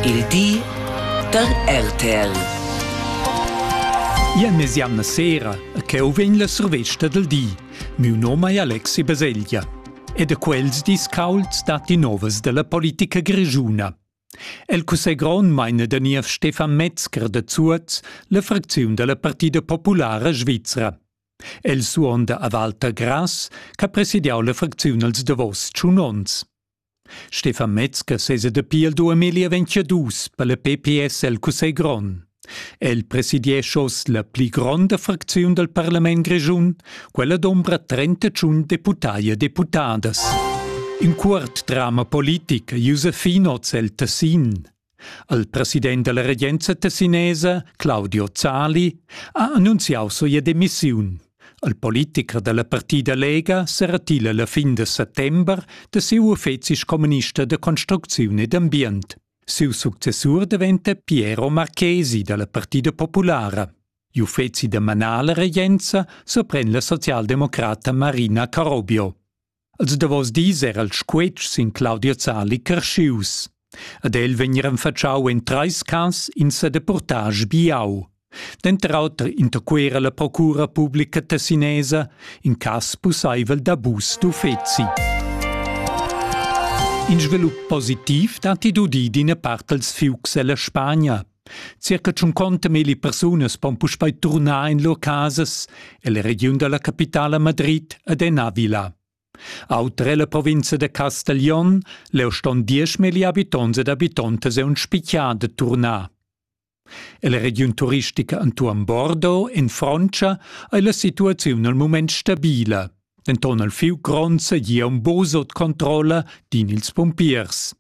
Il di da RTL. Ien mesiamna sera e cheu vegn la survesta del di. Miu nome è Alexi Baselgia ed a quels dis caulds datti novas della politica grigiuna. El cussegron meine der Niev Stefan Metzger de Zuoz la fracziun della Partida Populara Svizra. El suonda a Walter Grass, che presidiau la fracziun als davos tschun ons. Stefan Metzger sesa dapi il 2022 per la PPS el Cussegl grond. El presidiescha oz la pli gronda fracziun dal parlament grischun, quella d'ombra 31 deputai e deputadas. In cuort drama politic Josefin oz el Tessin. Il president dalla regenza tessinesa, Claudio Zali, ha annunziau sia demissiun. Il politicher dalla partida Lega seratila la fin de settember de siu uffeci communista de construcziun ed ambient. Siu successur diventa Piero Marchesi dalla Partida Populara. Gli uffeci da manala regenza sorpren la socialdemocrata Marina Carobio. Els davos dis era il squetsch sin Claudia Zali carschius. Ad el vegnir enfatschau en treis cas in sedeportage biau. Denter auter interquera la procura publica tessinesa in cass pusseivel d'abus d'uffeci. In svilup positiv datti d'udir d'ina part dels fiucs ella Spagna, Circa tschunconta milli persunas pon puspei turnar in lur casas ella regiun dalla capitala Madrid ed en Avila. Auter ella provinza da Castiglion leu ston diesch milli habitonts ed habitontas e un spitgar de turnar. Ella regiun turistica entuorn Bordeaux in Frontscha ei la situaziun al mument stabila. Denton al fiu gronds sia un bosot controlla din ils pumpiers.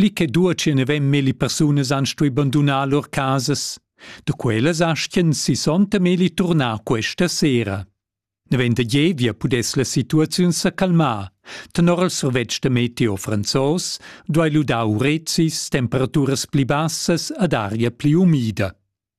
pli che duatschi ne vem melli persunas han stui bandunar lur casas. Da quellas astien sissonta meli turnar questa sera. Ne vend da Gievia pudess la situaziun sa calmar. Tenor il survetsch da meteo franzos duai ludar urezis, temperaturas pli bassas ad aria pli umida.